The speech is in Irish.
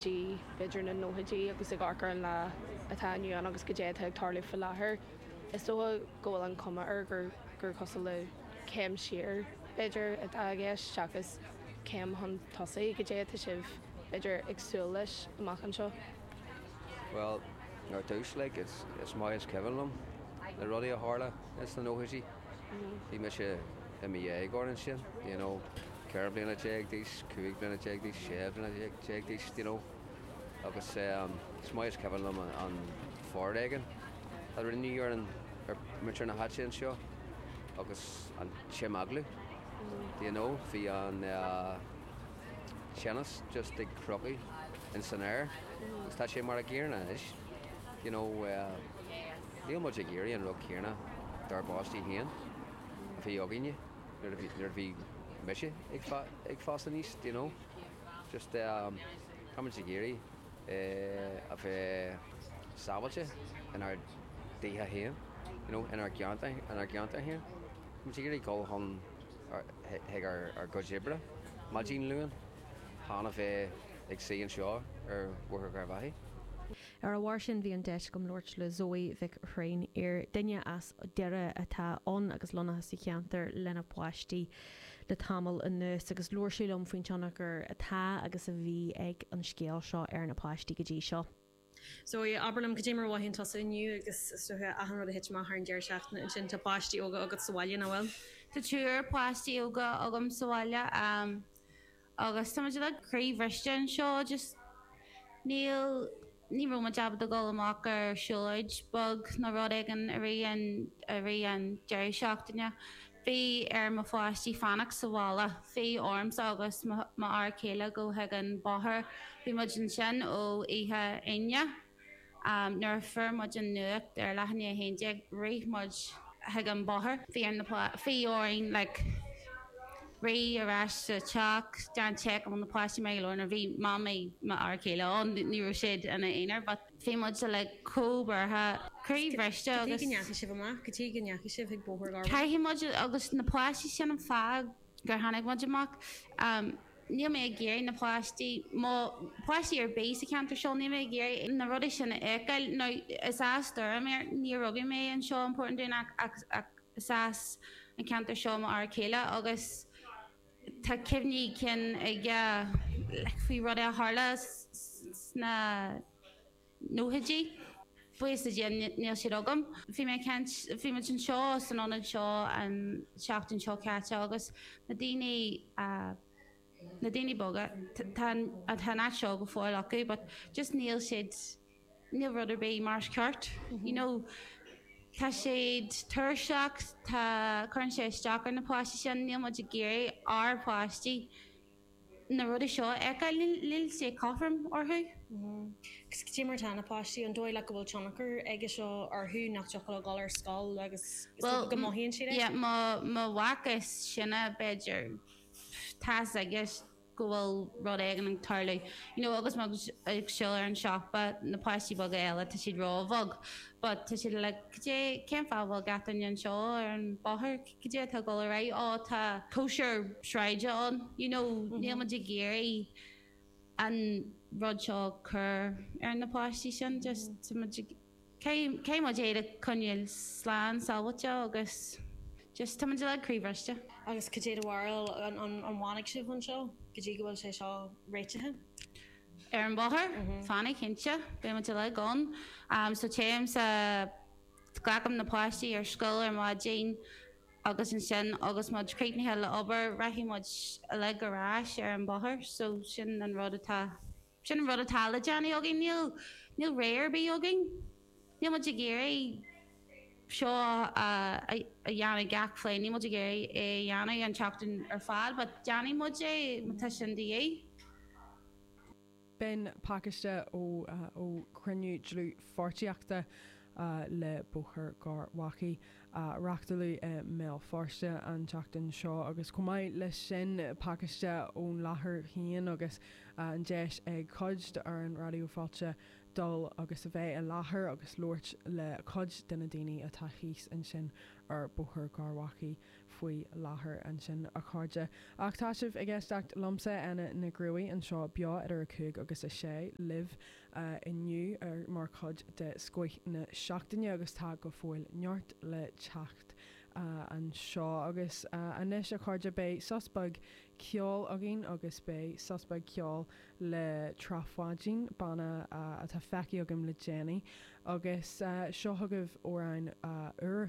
dtí idir na nóchaidí agus ag amharc ar an lá atá inniu ann agus cad é atá ag tarlú faoi láthair. Is dócha go bhfuil an chuma air gur cosúil le céim siar, b'fhéidir, atá i gceist seachas céim chun tosaigh, cad é atá sibh, b'fhéidir, ag súil leis amach anseo? Bhuel, ar dtús, like, is maith is cuimhin liom na rudaí a tharla ins na nóchaidí. bhí mise i mo dhéagóir ansin, you know, ceithre bliana déag d'aois, cúig bliana déag d'aois, sé bliana déag d'aois, d'you know, agus ehm, is maith is cuimhin liom an foréigean a rinneadh ar an, ar mhuintir na háite anseo agus an t-imeaglú, d'you know, bhí an eh, teannas just ag crochadh in san aer agus tá sé mar a gcéanna anois, d'you know, eh, Níl muid ag iarraidh an rud céanna dár bpáistí féin a bhí againne nuair a bhí mise ag fás aníos, do you know. Just ehm, tá muid ag iarraidh eh a bheith sábháilte inár dtithe féin, you know, inár gceantar, inár gceantar féin. Tá muid ag iarraidh dhul chun ár, chuig ár gcuid oibre maidin Luain, chan a bheith ag suí anseo ar Bhóthar Gharbhachaidh. Ar a bharr sin, bhí an deis agam labhairt le Zoe Mhic Thréinfhir, duine as Doire atá ann agus lonnaithe sa cheantar lena páistí le tamall anuas, agus labhair sí liom faoin tionchar atá agus a bhí ag an scéal seo ar na páistí go dtí seo. Zoe, Abair liom, cad é mar a mhothaíonn tusa inniu agus, is dócha, achan rud a thit amach thar an deireadh seachtaine ansin, tá páistí óga agat sa bhaile, nach bhfuil? Tá triúr páistí óga agam sa bhaile. Agus tá muid uilig croíbhriste anseo, just níl, ní raibh muid ábalta dul amach ar siúlóid beag nó rud éigin i rith an, i rith an deireadh seachtaine. Bhí ar mo pháistí fanacht sa bhaile, bhí ormsa agus mo fhear céile dul chuig an bóthar, bhí muid ansin ó oíche Aoine. Nuair a fuair muid an nuacht ar a leath i ndiaidh 11, rith muid chuig an bóthar. Bhí ar na páistí, bhí orainn like rith ar ais sa teach, déan check an bhfuil na páistí maith go leor, now, bhí mamaí m'fhear céile ann, ní raibh siad ina aonar but bhí muid uilig chomh buartha, croíbhriste agus. Cad chuige a ndeachaigh sibh amach, cad chuige a ndeachaigh sibh chuig Bóthar Gharbhachaidh. Caithfidh muid, agus na páistí, sin an fáth gur tháinig muid amach. níl mé ag iarraidh na páistí, nó páistí ar bith sa cheantar seo, níl mé ag iarraidh na rudaí sin a fheiceáil. Now, is as Doire mé, níor rugadh mé anseo i bPort an Dúnáin ach, ach, ach is as an ceantar seo m'fhear céile agus tá cuimhní cinn aige, like, faoi rudaí a tharla sna. nóchaidí. Buíochas le Dia níl siad agam. Bhí mé ag caint, bhí muid anseo san ionad seo an seachtain seo caite agus na daoine, na daoine boga, tá an, tá an áit seo go fóill acu but just níl siad, níl rud ar bith mar is ceart, you know, tá siad tuirseach, tá, cuireann sé isteach ar na páistí sin, níl muid ag iarraidh ár bpáistí. na rudaí seo a fheiceáil, níl sé cothrom orthu. Cé mar atá na páistí, an dóigh leat go bhfuil tionchar aige seo orthu, nach dtiocfadh leo dul ar scoil agus is dócha go mothaíonn siad é? Bhuel, mo mhac is sine, b'fhéidir, tá's aige go bhfuil rud éigin ag tarlú, you know agus muid ag siúl ar an siopa, na páistí beaga eile tá siad róbheag but tá siad like, cad é, cén fáth a bhfuil gach duine anseo ar an bhóthar? cad é atá ag dul ar aghaidh? Ó, tá cóisir sráide ann, you know, níl muid ag iarraidh an rud seo a chur ar na páistí sin, just, tá muid ag, caithfidh muid iad a choinneáil slán sábháilte agus just, tá muid uilig croíbhriste. Agus cad é do bharúil, an bhfanfaidh sibh anseo go dtí go bhfuil sé seo réitithe? Ar an bhóthar? Fanfaidh, cinnte, beidh muid uilig ann, so téim sa Glacaim na páistí ar scoil ar maidin agus ansin agus muid críochnaithe le obair rachaidh muid uilig ar ais ar an bóthar. So sin an rud atá, sin an rud atá le déanamh againn. Níl, níl rogha ar bith againn. Níl muid ag iarraidh seo a dhéanamh gach lá, níl muid ag iarraidh é a dhéanamh an tseachtain ar fad but déanfaidh muid é má tá sin de dhíth. B'in pacáiste ó chruinniú dlúthpháirtíochta le Bóthar Gharbhachaidh a reachtáladh i mBéal Feirste an tseachtain seo agus chomh maith leis sin pacáiste ón láthair féin agus an deis ag cuid d'fhoireann Raidió Fáilte dul agus a bheith i láthair agus labhairt le cuid de na daoine atá thíos ansin ar Bhóthar Gharbhachaidh. faoi láthair ansin, a chairde, ach tá sibh ag éisteacht liomsa, Áine na gCruaidh, anseo beo idir 5 agus 6 libh inniu mar chuid de Scoith na Seachtaine agus tá go fóill neart le teacht anseo. Agus anois, a chairde, beidh sos beag ceoil againn agus beidh sos beag ceoil le Trá Pháidín, banna atá feicthe agam le déanaí, agus seo chugaibh amhrán úr.